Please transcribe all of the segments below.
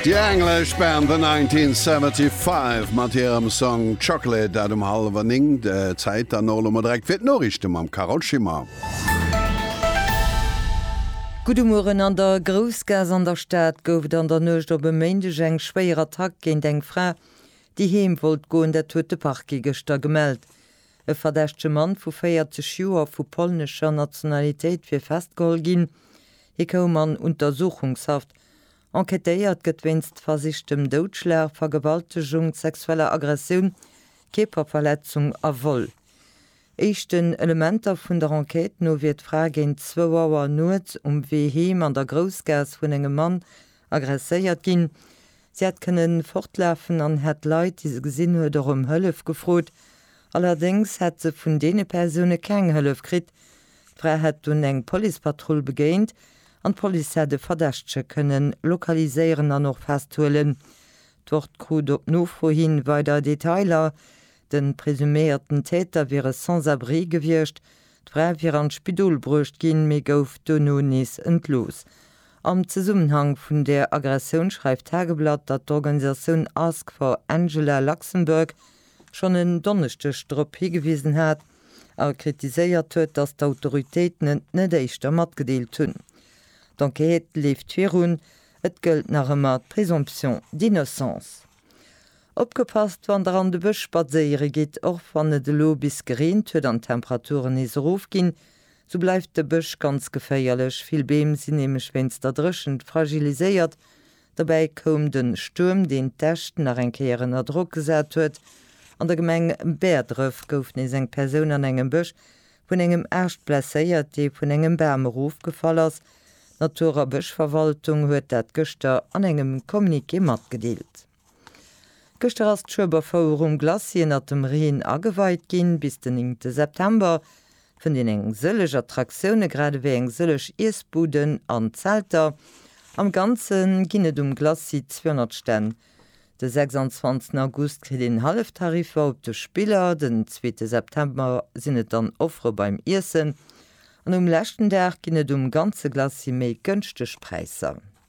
Déi englesch Band The 1975 mat hirem Song Chocolate, dat um hallwer 9. Zäit dann och elo mol direkt fir d'Noriichte mam Carole Schimmer. Gudde Mueren, An der Groussgaass an der Stad gouf et an der Nuecht op e Méindeg eng schwéier Attack géint eng Fra, déi heem wollt goen. Dat huet de Parquet gëschter gemellt. E verdächtege Mann vu 40 Joer vu polnescher Nationalitéit wier festgeholl ginn. Hie koum an Untersuchungshaft. Enquêtéiert gëtt wéinst versichtem Doudschlag, Vergewaltegung, sexueller Aggressioun, Kierperverletzung a Vol. Éischten Elementer vun der Enquête no wier d'Fra géint zwou Auer nuets um Wee heem an der Groussgaass vun engem Mann Agresséiert ginn. Si hätt kënnen fortlafen an hätt d'Leit, déi se gesinn huet, och ëm Hëllef gefrot. Allerdéngs hätt se vun deene Persoune keng Hëllef kritt. D'Fra hätt dunn eng Policepatrull begéint an d'Police hätt e Verdächtege kënnen lokaliséieren an och festhuelen. D'Wort krut op Nofro hi weider Detailer. De presuméierten Täter wier e Sans-abri gewiescht. D'Fra wier an d'Spidol bruecht ginn, mee gouf duerno nees entlooss. Am Zesummenhang vun der Aggressioun schreift d'Tageblatt, datt d'Organisatioun Ask for Angela Luxembourg schonn en Donneschdeg drop higewisen hat a kritiséiert huet, datt d'Autoritéiten et net éischter matgedeelt hunn. D'Enquête leeft virun, et gëllt nach ëmmer d'Présomption d'innocence. Opgepasst wann der an de Bësch spadséiere gitt, Och wann et elo bis gereent huet an d'Temperaturen nees erofginn, Sou bleift de Bësch ganz geféierlech, vill Beem sinn nämlech wéinst der Dréchent fragiliséiert. Dobäi koum de Stuerm, deen d'Äscht nach eng Kéier ënner Drock gesat huet. An der Gemeng Bäerdref gouf nees eng Persoun an engem Bësch vun engem Aascht blesséiert, dee vun engem Bam erofgefall ass. D'Natur a Bëschverwaltung huet dat gëschter an engem Communiqué matgedeelt. Gëschter ass d'Schueberfouer um Glacis ënnert dem Reen ageweit ginn. Bis den 9 te September fënnt een eng sëllech Attraktioune grad ewéi eng sëllech Iessbuden an Zelter. Am Ganze ginn et um Glacis 200 Stänn. De 26 August kritt een Halleftariffer op de Spiller, den 2 te September sinn et dann Offere beim Iessen an um leschten Dag ginn et um ganze Glacis méi gënschteg Präisser.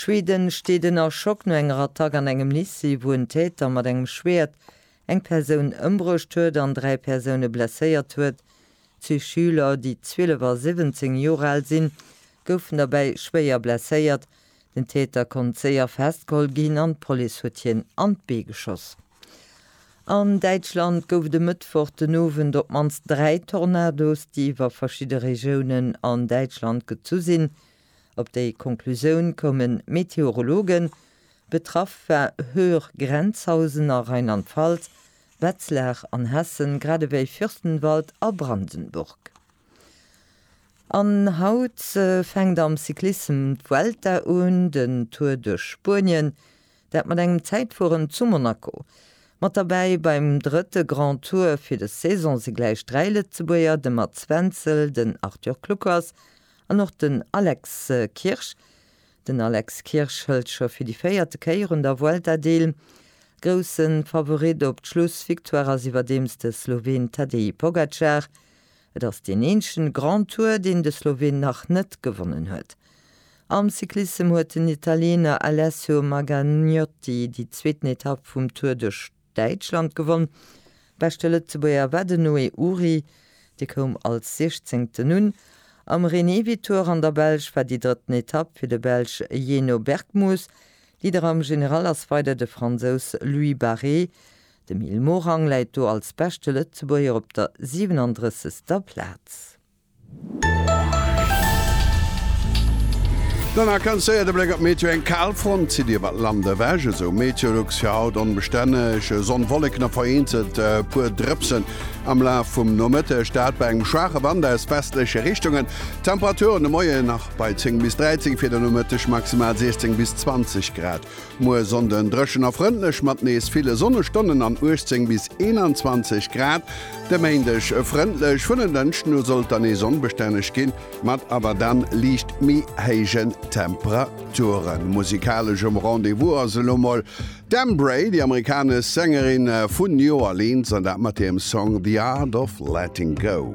Schweden steet ënner Schock no enger Attack an engem Lycée, wou en Täter mat engem Schwäert eng Persoun ëmbruecht huet an dräi Persoune blesséiert huet. Zwee Schüler, déi 12 a 17 Joer al sinn, goufen derbäi schwéier blesséiert. Den Täter konnt séier festgeholl ginn an d'Police huet hien an d'Bee geschoss. An Däitschland gouf et e Mëttwoch den Owend op d'mannst dräi Tornados, déi iwwer verschidde Regiounen an Däitschland gezu sinn. Op déi Conclusioun koumen d'Meteorologen. Betraff war Höhr-Grenzhausen a Rheinland-Pfalz, Wetzlar an Hessen, grad ewéi Fürstenwald a Brandenburg. An haut fänkt am Cyclissem d'Vuelta un, den Tour duerch Spuenien, dat mat engem Zäitfueren zu Monaco. Mat derbäi beim drëtte Grand Tour fir des Saison si gläich dräi Lëtzebuerger, de Mats Wenzel, den Arthur Kluckers An och den Alex Kirsch. Den Alex Kirsch hëlt scho fir déi véierte Kéier un der Vuelta deel. Grousse Favorit op d'Schlussvictoire ass iwwerdeems de Sloween Tadej Pogacar. Et ass deen eenzegen Grand Tour, deen de Sloween nach net gewonnen huet. Am Cyclissem huet den Italiener Alessio Margagnotti déi zweeten Etapp vum Tour duerch Däitschland gewonn. Beschte Lëtzebuerger war den Noé Uhry, dee koum als Siechzéngten un. Am René Vitour an der Belsch war déi drëtten Etapp fir de Belsch Jeannot Bergmoes. Leader am General ass weider de Fransous Louis Barré. De Mil Morang läit do als beschte Lëtzebuerger op der 37. Plaz. Dann nach ganz séier de Bléck op d'Meteo, Eng Kalfront zitt iwwert d'Land ewech, esou Meteolux. Fir haut onbestänneg Sonn, Wolleken a vereenzelt e puer Drëpsen am Laf vum Nomëtteg, dat bei engem schwaache Wand aus westleche Richtungen. D'Temperature de Moien nach bei 10 bis 13, fir de Nomëtteg maximal 16 bis 20 Grad. Muer Sonnden dréchen a frëndlech mat nees ville Sonnestonnen an 18 bis 21 Grad. De Méindeg e frëndlech, vun en Dënschden u sollt dann nees onbestänneg ginn, mat awer dann liicht méi héijen Temperaturen. Musikalesch um Rendez-vous ass elo mol d'Embrae, déi amerikanesch Sängerin vun New Orleans, an dat mat hirem Song The Art of Letting Go.